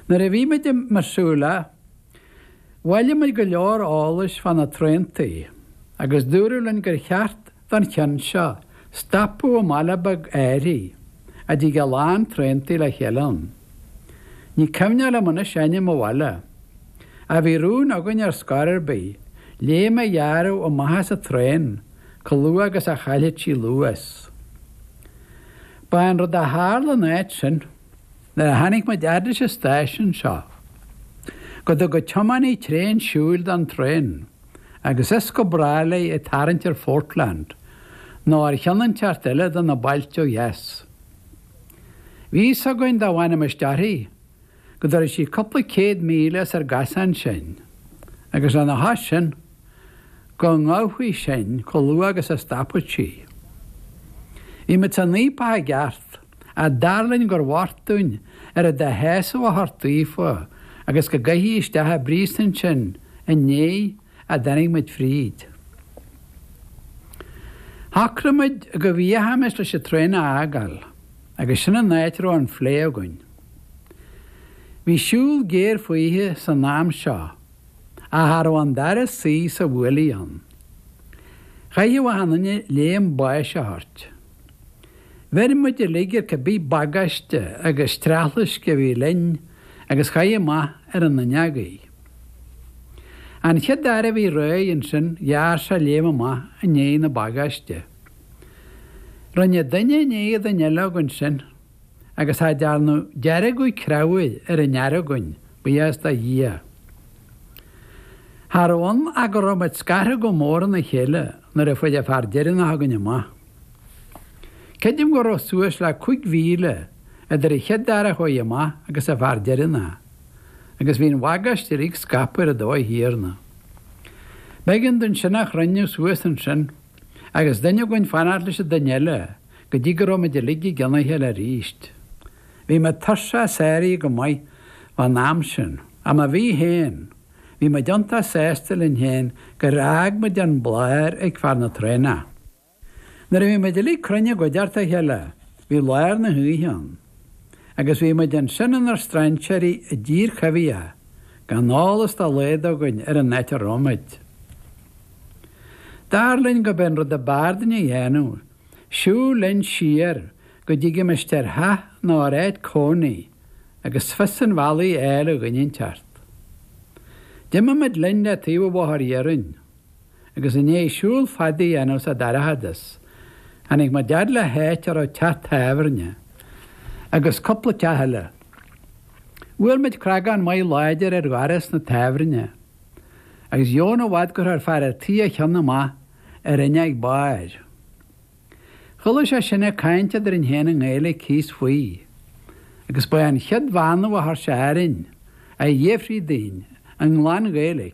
Nuair a bhí muid i Missoula, bhailigh muid go leor eolais fá na traentaí agus dúradh linn gur cheart don cheann seo stopadh i mbaile beag áirithe a dtig a lán traentaí le chéile ann. Ní cuimhneach liom anois ainm an bhaile, ach bhí rún againn ar scor ar bith léim a ghearradh amach as an traein chomh luath agus a chaillfeadh sí luas. Ba é an rud a tharla ina áit sin, nuair a tháinig muid a fhad leis an stáisiún seo, go dtug an tiománaí tréan siúil don traen, agus as go brách léi ag tarraingt ar Phortland, nó ar cheann inteacht eile de na bailte ó dheas. Bhí fhios againn dá bhfanaimis uirthi, go dtabharfadh sí cúpla céad míle as ár gcosán sinn, agus lena chois sin, go ngabhfaí sinn chomh luath agus a stopfadh sí. Bhí muid san fhaopach i gceart, ach dar linn gur mhairg dúinn oiread de shásamh a thabhairt daofa agus go gcaithfí isteach i bpríosún sinn i ndiaidh a dtáinig muid fríd. Shocraigh muid go bhfiachaimis leis an traein a fhágáil agus sin an áit a raibh an phlé againn. Bhí siúl géar faoithe san am seo ach cha raibh an dara suí sa bhuaile ann. Chaithfeadh achan duine léim báis a thabhairt. Bheir muid uilig ar cibé bagáiste agus streachlaisc a bhí linn agus chaith amach ar an fhuinneog í. An chéad fhear a bhí réidh ansin ghearr sé léim amach i ndiaidh na bagáiste. Rinne duine i ndiaidh duine eile againn sin agus cha dearnadh deargadh creabhair ar aon fhear againn, buíochas do Dhia. Cha raibh ann ach go raibh muid scartha go mór óna chéile nuair a fuair an fear deireanach againn amach. Creidim go raibh suas le cúig mhíle idir an chéad fhear a chuaigh amach agus an fear deireanach, agus bhí an bhagáiste uilig scaipthe ar an dóigh chéanna. B'éigean dúinn sin a chruinniú suas ansin, agus duine againn fanacht leis an duine eile go dtí go raibh muid uilig i gcionn a chéile arís. Bhí mé tuirseach sáraithe go maith fán am sin, ach má bhí féin, bhí muid iontach sásta linn féin gur fhág muid an bladhaire ag fear na traenach. Nuair a bhí muid uilig cruinn i gcuideachta a chéile, bhí lár na hoíche ann, agus bhí muid ansin inár strainséirí i dtír choimhthíoch, gan eolas dá laghad againn ar an áit a raibh muid. Dar linn gurb é an rud ab fhearr dúinn a dhéanamh, siúl linn siar go dtigimis ar theach nó ar áit cónaí agus fios an bhealaigh a fháil ó dhuine inteacht. D'imigh muid linn le taobh an bhóthair iarainn. agus i ndiaidh siúl fada a dhéanamh sa dorchadas, tháinig muid a fhad le háit a raibh teach tábhairne agus cúpla teach eile. Bhuail muid cnagán maith láidir ar dhoras na tábhairne, agus dheamhan i bhfad gur chuir fear a' tí a chionn amach ar fhuinneog bairr. Chuala sé sinn ag caint eadrainn fhéin i nGaeilic thíos faoi, agus ba é an chéad bheannú a chuir sé orainn, a fhiafraí dínn, i nglan-Ghaeilic,